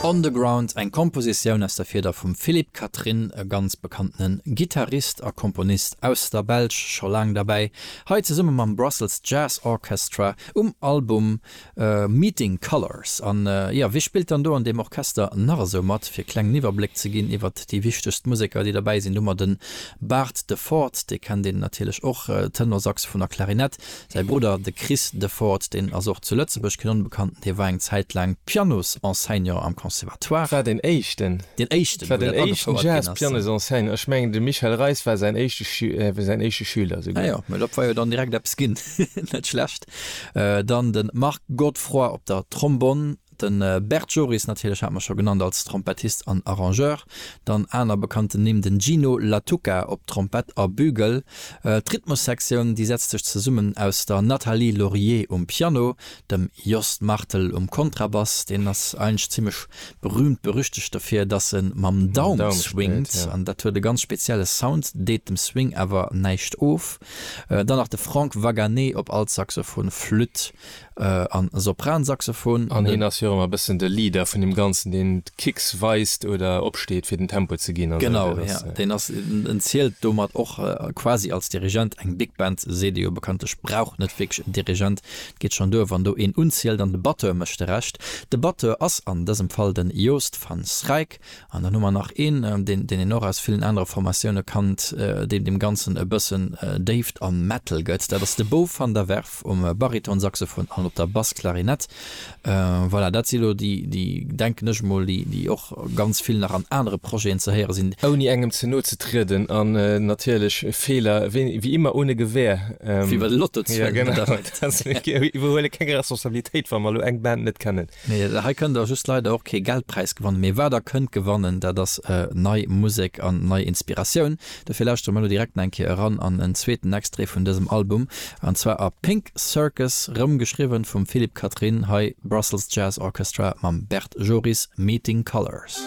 On the Ground, eng Kompositioun aus der Fieder vum Philippe Catherine, e ganz bekanntene Gittarist a Komponist aus der Belsch, scho laang derbäi, hei zesumme mam Brussels Jazz Orchestra um Album Meeting Colors. An jo, wie spillt dann do an deem Orchester nach esou mat? Fir e klengen Iwwerbléck ze ginn iwwert déi wichtegst Museker, déi derbäi sinn, hu mer de Bart de Ford, dee kennt een natierlech och, Tenor-Saxophon a Klarinett, Säi Brudder, de Chris Deford, deen ass och zu Lëtzebuerg keen Onbekannten, hie war eng Zäit laang Pianosenseignant am Conservatoire. War deen éischten. Deen éischten, wou dat agefouert ginn ass. Jazz-Pianosenseignant, ech mengen de Michel Reis war säin éischte Schü, säin éischte Schüler souguer. Ah jo, mä dat war jo dann direkt eppes ginn, net schlecht. Dann de Marc Godefroid op der Trombonn. De Bert Joris natierlech hat mer scho genannt als Trompettist an Arrangeur. Dann aner bekannten Nimm, den Gino Lattuca op Trompett a Bugle. D'Rhythmussektioun déi setzt sech zesummen aus der Nathalie Laurier um Piano, dem Jost Martel um Kontrabass, deen ass eigentlech zimmlech berühmt berüchtegt dofir dass e mam Daum swingt an dat huet e ganz spezielle Sound, deet dem Swing awer näischt of. Dann nach de Franck Wagané op Altsaxophon, Flütt a Sopransaxophon. An hien ass jo och ëmmer e bëssen de Leader vun deem Ganzen, deen d'Kicks weist oder opsteet, fir den Tempo ze ginn. Genau, jo. Deen ass, en zielt domat och quasi als Dirigent. Eng Big Band, seet ee jo bekanntlech, brauch net wierklech en Dirigent. Et geet schonn duer, wann do een unzielt an de Batteur mécht de Rescht. De Batteur ass an dësem Fall den Joost van Schraik. An dann hu mer nach een, deen een och aus villen anere Formatioune kannt, deen deem Ganzen e bëssen Déift a Metal gëtt. Dat ass de Bo van der Werf um Baritonsaxophon an op der Bassklarinett. Voilà, dat si lo déi, déi, denken ech emol, déi och ganz vill nach an anere Projeten ze héiere sinn. Ouni engem ze no ze trieden an natierlech Feeler wéi immer ohne Gewähr. Wéi bei de Lottozwëngen. Iwwerhuele keng Responsabilitéit, wa mer elo eng Band net kennen. Mee hei kënnt Der just leider och kee Geldpräis gewannen. Mee wat Der kënnt gewannen, dat ass nei Musek an nei Inspiratioun. Dofir lauschtere mer elo direkt nach eng Kéier eran an en zweeten Extrait vun dësem Album, an zwar a Pink Circus, rëm geschriwwen vum Philippe Catherine, hei Brussels Jazz Orchestra mam Bert Joris, Meeting Colors.